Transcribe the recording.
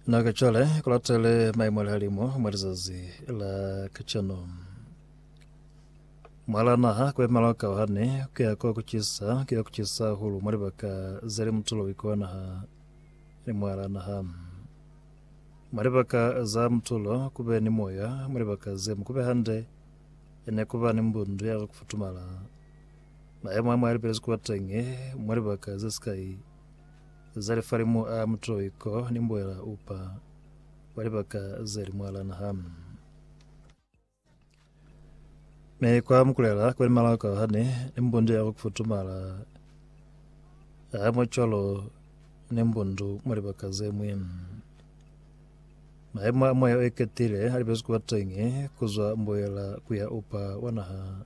Na kacale kulatele maimo a lihalimo mwa lizazi la kacano. Mwala naha kuemelwa ka hane kuya kwa kucisa kuya kucisa hulu mwa libaka zeli mutulo wikwa naha ni mwala naha. Mwa libaka za mutulo kube ni moya mwa libaka ze mukube hande ene kuba ni mbundu ya kufutumala. Maemo a mwa lipelezi kuba tenge mwa libaka ze sikai za lifalimu a mutoiko ni mbwela upa kwa libaka ze li mwalana hamu. Me kwa mukulela kwa limala ka hane ni mbundu ya kufutumala a mwacwalo ni mbundu mwa libaka ze mwe. Maemo a moya o iketile a libezi kuba tengi kuzwa mbwela kuya upa wa naha